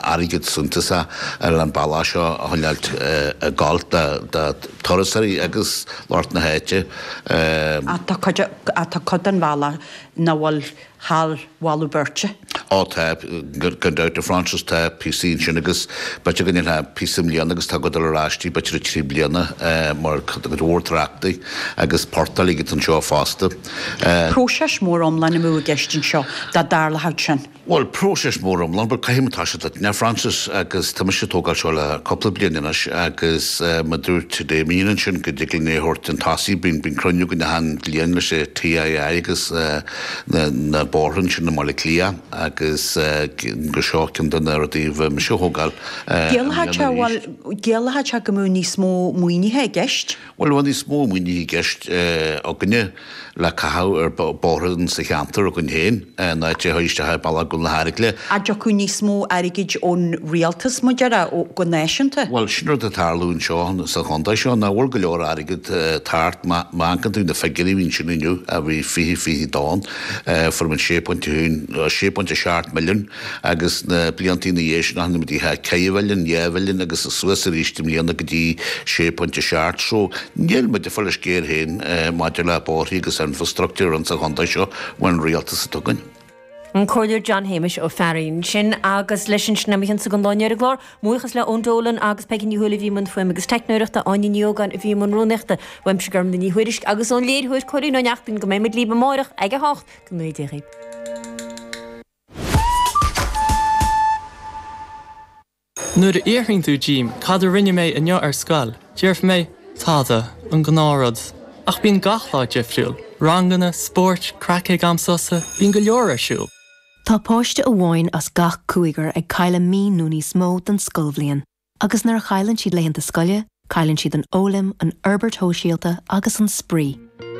airgead suntasach ar an bhealach seo a choinneáilt i gceart do thurasóirí agus lucht na háite. Ach tá cuid den bhealach nach bhfuil thar mholadh beirte. Ó tá, gan dabht, a Frances, tá píosaí ansin agus b'fhéidir go ndéanfá píosa i mbliana agus tá tú ag dul ar ais dtí b'fhéidir i dtrí bliana mar tá cuid mhór tráchta agus portaigh agat anseo fosta. Próiseas mór iomlán amú i gceist anseo dá dtarlódh sin. Bhuel, próiseas mór iomlán, bhuel, caithfidh mé a rá leat, a Frances, agus tá mise ag tógáil seo le cúpla bliain anois agus mar a dúirt Éamonn ansin go dtig linn é a thabhairt chun tosaigh, bíonn cruinniú againn achan bhliain leis an TII agus na bóithre ansin i mBaile Cliath agus gur seo ceann de na rudaí a bhí mise ag tógáil i mbliana arís. Geallfadh sé go mbeadh níos mó maoinithe i gceist. Bhuel, bheadh níos mó maoinithe i gceist againne le caitheamh ar bhóithre sa cheantar againn féin ná ag tíocht isteach i mbealach Ghob na hAdhairce. An dtiocfadh níos mó airgid ón rialtas, mar a déarfá, go náisiúnta? Bhuel, sin rud a tharlaíonn anseo sa chontae seo, nach bhfuil go leor airgid thart. Má amharcann tú ar na figiúirí a bhí ansin inniu, a bhí fiche, fiche a haon, fuair muid sé phointe a haon, sé phointe a seacht milliúin, Agus na blianta ina dhiaidh sin, tháinig muid go dtí ceithre mhilliún, dheich mhilliún agus suas arís i mbliana go dtí sé phointe a seacht. So, níl muid ag fáil ár sciar féin maidir le bóithrí agus infreastruchtúr ins an chontae seo mar an rialtas a tugann. An Comhairleoir John Shéamais Ó Fearraigh ansin agus leis sin tá muid tagtha go deireadh an chláir. Buíochas le Eoin Dolan agus Peigí Ní Chonghaile a bhí i mbun fuaime agus teicneoireachta, Áine Ní Ógáin a bhí i mbun rúnaíochta, uaimse Gormfhlaith Ní Thuairisg agus ón léiritheoir Cóilín Ó Neachtain. Go mbeimid libh amárach ag a hocht go n-éirí libh. Nuair a fhiafraíonn tú díom cad a rinne mé inniu ar scoil, déarfaidh mé, tada, an gnáthrud. Ach bíonn gach lá difriúil. Ranganna, spóirt, craic ag am sosa, bíonn go leor ar siúl. Tá páiste amháin as gach cúigear ag cailleadh mí nó níos mó den scoilbhliain. Agus nuair a chailleann siad laethanta scoile, cailleann siad an fhoghlaim, an fhorbairt shóisialta agus an spraoi.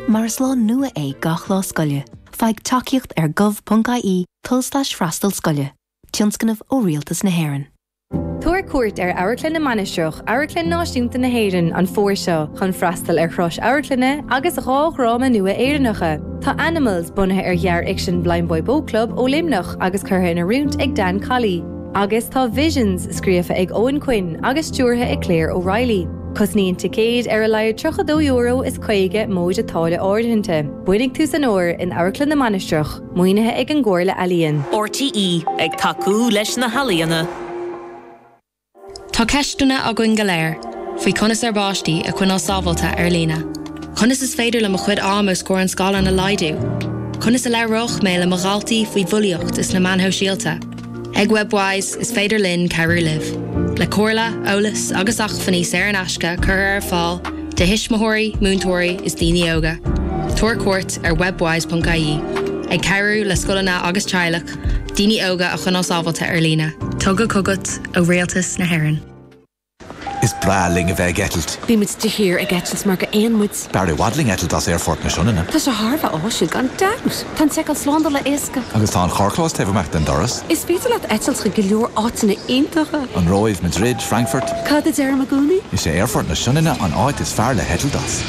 Mar is lá nua é gach lá scoile, faigh tacaíocht ar gov.ie tulslais freastal scoile, tionscnamh ó Rialtas na hÉireann. Tabhair cuairt ar Amharclann na Mainistreach, Amharclann Náisiúnta na hÉireann, an fómhar seo chun freastal ar chroí na hamharclainne agus dhá dhráma nua Éireannacha. Tá Animals, bunaithe ar ghearrfhicsean Blindboy Boatclub ó Luimneach agus curtha in oiriúint ag Dan Colley, Agus tá Visions scríofa ag Eoin Quinn agus stiúrtha ag Claire O'Reilly. Cosnaíonn ticéid ar a laghad €32 is caoga móide táille áirithinte. Bainfidh tú an-sult as uair in Amharclann na Mainistreach, maoinithe ag an gComhairle Ealaíon. RTÉ, ag tacú leis na healaíona. Tá ceisteanna againn go léir faoi conas ár bpáistí a choinneáil sábháilte ar líne. Conas is féidir liom mo chuid ama os comhair an scáileáin a laghdú? Conas a labhródh mé le mo dhaltaí faoi bhulaíocht is na meáin shóisialta? Ag Webwise is féidir linn cabhrú libh le comhairle, eolas agus acmhainní saor in aisce a chur ar fáil do thuismitheoirí, múinteoirí is daoine óga. Tabhair cuairt ar webwise.ie ag cabhrú le scoileanna agus teaghlaigh daoine óga a choinneáil sábháilte ar líne. Tugtha chugat ó Rialtas na hÉireann. Is breá linn a bheith ag eitilt. Bíonn muid de shíor ag eitilt mar gur éin muid. B'fhearr i bhfad linn eitilt as Aerfort na Sionainne. Tá sé thar a bheith áisiúil, gan dabht! Tá an tseiceáil slándála éasca. Agus tá an carrchlós taobh amuigh den doras. Is féidir leat eitilt chuig go leor áiteanna iontacha. An Róimh, Madrid, Frankfurt. Cad a deirim i gcónaí? Is é Aerfort na Sionainne an áit is fearr le heitilt as.